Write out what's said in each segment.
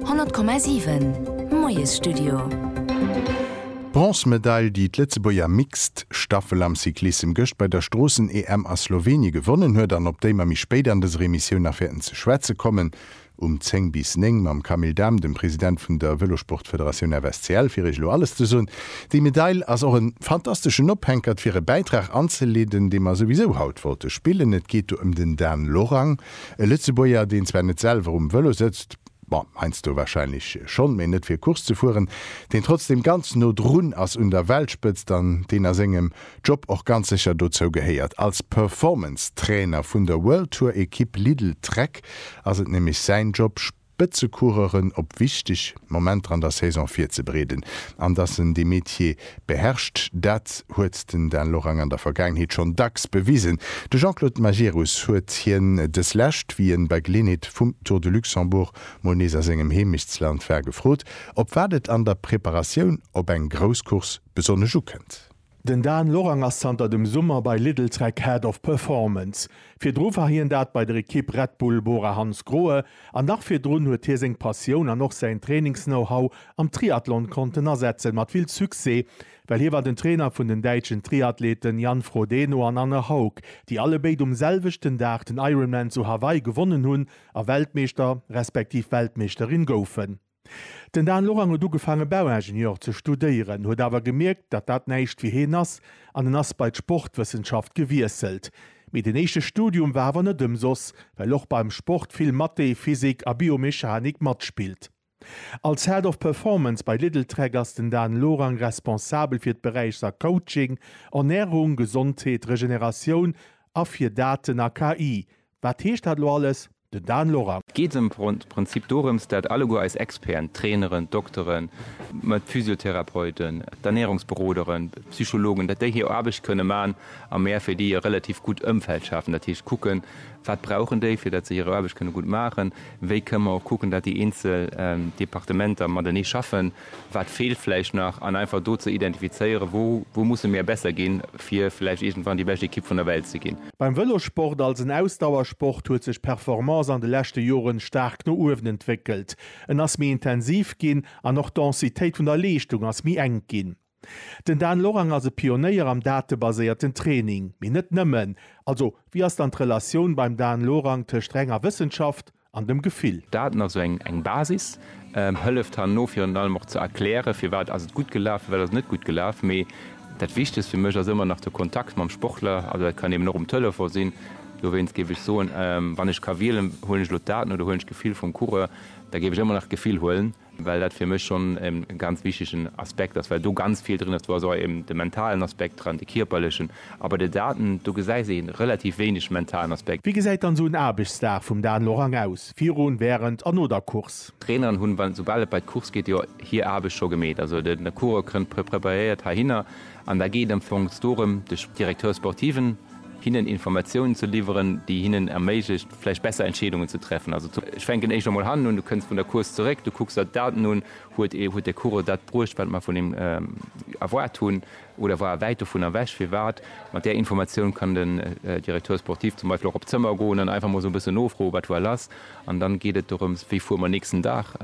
100,7 Moiesstudio. D'Bronzemedail, déi d'Lëtzebuerger Mixed Staffel am Cyclissem gëscht bei der Stroossen-EM a Slowenien gewonnen huet an op déi mer méi spéit an dëser Emissioun nach wäerten ze schwätze kommen, um 10 bis 9 mam Camille Dahm, dem President vun der Vëlosport-Federatioun FSCL, fir iech elo alles ze soen. Déi Medail ass och e fantasteschen Ophänkert, fir e Bäitrag anzeleeden, dee mer souwisou haut wollte spillen. Et geet do ëm den Dan Lorang. E Lëtzebuerger, deen zwar net selwer um Vëlo sëtzt, bon, heiansdo wahrscheinlech schonn, mee net fir Course ze fueren, deen trotzdem ganz no drun ass un der Weltspëtzt an deen a sengem Job och ganz sécher dozou gehéiert. Als Performance-Trainer vun der World Tour-Ekipp Lidl Trek ass et nämlech säin Job, Spëtzecoureuren op wichteg Momenter an der Saison virzebereeden an datt en de Metier beherrscht, dat huet den Dan Lorang an der Vergaangenheet schonn dacks bewisen. De Jean-Claude Majerus huet hien dës Lescht, wéi en bei Geleeënheet vum Tour de Luxembourg mol nees a sengem Heemechtsland war, gefrot, op wat et an der Preparatioun op eng grouss Course besonnesch ukënnt. Den Dan Lorang ass zanter dem Summer bei Lidl-Trek Head of Performance. Virdru war hien dat bei der Ekipp Red Bull Bora Hansgrohe an nach virdrun huet hie seng Passioun an och säin Trainings-Know-How am Triathlon konnten asetzen, mat vill Succès, well hie war den Trainer vun den däitschen Triathleten Jan Frodeno an Anne Haug, déi allebéid um selwechten Dag den Ironman zu Hawaii gewonnen hunn a Weltmeeschter respektiv Weltmeeschterin goufen. Den Dan Lorang huet ugefaange Bauingenieur ze studéieren, huet awer gemierkt, datt dat näischt fir hien ass an en ass bei d'Sportwëssenschaft gewiesselt. Mee den éischte Studium war awer net ëmsoss, well och beim Sport vill Mathé, Physik a Biomechanik matspillt. Als Head of Performance bei Lidl Trek ass den Dan Lorang responsabel fir d'Beräichser Coaching, Ernärung, Gesondheet, Regeneratioun a fir Daten a KI, Wat heescht dat elo alles? Den Dan Lorang. Et geet am Prinzip dorëms, dat alleguer eis Experten, d'Traineren, d'Dokteren, d'Physiotherapeuten, d'Ernärungsberoderen, d'Psychologen, dat déi hir Aarbecht kënne man a mär fir déi e relativ gutt Ëmfeld schafen. Dat heescht kucken, wat brauchen déi, fir dat se hir Aarbecht kënne gutt maachen? Wéi kënne mer och kucken, dat déi eenzel Departementer matenee schaffen? Wat feelt vläicht nach? An einfach do ze identifizéieren, wou, wou musse mir besser ginn, fir vläicht iergendwann déi bescht Ekipp vun der Welt ze ginn. Beim Vëlossport als en Ausdauersport huet sech d'Performance an de leschte Joren staark no uewen entwéckelt. En ass méi intensiv ginn an och d'Densitéit vun der Leeschtung ass méi enk ginn. Den Dan Lorang ass e Pionéier am datebaséierten Training, mee net nëmmen. Also wéi ass dann d'Relatioun beim Dan Lorang tëscht renger Wëssenschaft, an dem Gefill. Daten, also eng Basis, hëlleft herno virun allem och ze erklären, firwat ass et gutt gelaf, firwat ass et net gutt gelaf. Mee dat Wichtegst fir mech ass ëmmer nach de Kontakt mam Sportler. Also dat kann eben och um Telefon sinn. Dowéinst géif ech soen, wann ech ka wielen, huelen ech elo d'Daten oder huelen ech d'Gefill vum Coureur, da géif ech ëmmer nach d'Gefill huelen. well dat fir mech schonn e ganz wichtegen Aspekt ass, well do ganz vill drin ass. Do ass och eben de mentalen Aspekt dran, de kierperlechen, a bei de Daten, do gesäis ee relativ wéineg mentalen Aspekt. Wéi gesäit dann esou en Aarbechtsdag vum Dan Lorang aus, virun, wärend a no der Course? D'Traineren hunn, wann, esoubal et bei d'Course geet, jo hir Aarbecht scho gemeet. Also de Coureur kënnt preparéiert heihinner an da geet am Fong dorëm, de Directeur sportiven hinnen Informatiounen ze liwweren, déi hinnen erméiglecht, vläicht besser Entscheedungen ze treffen. Also ech fänken éischt emol hannen un, du kënns vun der Course zeréck, du kucks der d'Daten un, huet ee, huet de Coureur dat bruecht, wat mer vun him erwaart hunn oder war e wäit dovun ewech? Firwat? Mat där Informatioun kann den Directeur sportif zum Beispill och op d'Zëmmer goen an einfach emol esou e bëssen nofroen, wat war lass? An dann geet et dorëms, wéi fuere mer nächsten Dag?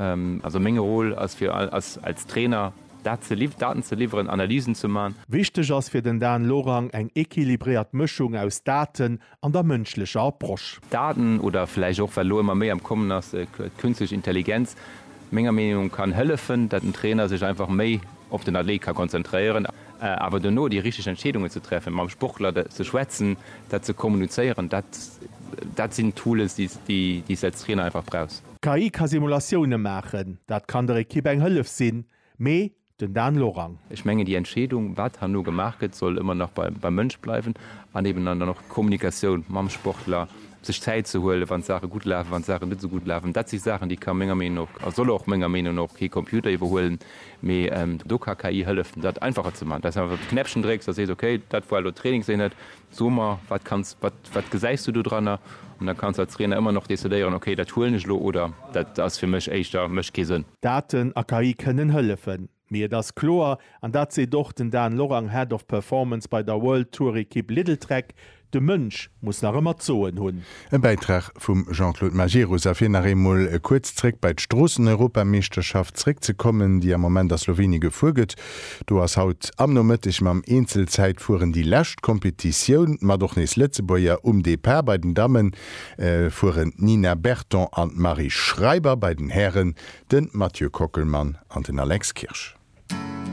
Also meng Rôle ass fir als Trainer dat ze liww-, Daten ze liwweren, Analysen ze man. Wichteg ass fir den Dan Lorang eng equilibréiert Mëschung aus Daten an der mënschlecher Approche. Daten, oder vläicht och, wat elo ëmmer méi am Kommen ass, d'künstlech Intelligenz, menger Meenung no, kann hëllefen, datt den Trainer sech einfach méi op den Athlet ka konzentréieren. Awer duerno déi richteg Entscheedungen ze treffen, mam Sportler ze schwätzen, dat ze kommunizéieren, dat, dat sinn Tools, déi, déi s de als Trainer einfach brauchs. D'KI ka Simulatioune maachen, dat kann der Ekipp eng Hëllef sinn, mee Den Dan Lorang. Ech mengen, déi Entscheedung, wat herno gemaach gëtt, soll ëmmer nach beim Mënsch bleiwen an eben dann och d'Kommunikatioun mam Sportler, sech Zäit ze huelen, wann d'Saache gutt lafen, wann d'Saache net esou gutt lafen. Dat si Saachen, déi ka menger Meenung no a soll och menger Meenung no kee Computer iwwerhuelen, mee do ka KI hëllefen, dat einfacher ze maachen, dass awer de Knäppchen drécks a sees, okay, dat war elo Trainingseenhet, So mer, wat kanns, wat, wat gesäis du dodranner? An da kanns de als Trainer ëmmer nach decidéieren, okay, dat huelen ech elo oder dat ass fir mech éischter, mécht kee Sënn. Daten a KI kënnen hëllefen, mee et ass kloer, an dat seet och den Dan Lorang, Head of Performance bei der World Tour Ekipp Lidl Trek, de Mënsch muss nach ëmmer d'Soen hunn. E Bäitrag vum Jean-Claude Majerus. A fir nach eemol kuerz zréck bei d'Stroosseneuropameeschterschaft zréckzekommen, déi am Moment a Slowenien gefuer gëtt, do ass haut am Nomëtteg mam Eenzelzäitfueren déi lescht Kompetitioun mat och nees Lëtzebuerger um Depart. Bei den Damme fueren d'Nina Berton an d'Marie Schreiber, bei den Hären de Mathieu Kockelmann an den Alex Kirsch.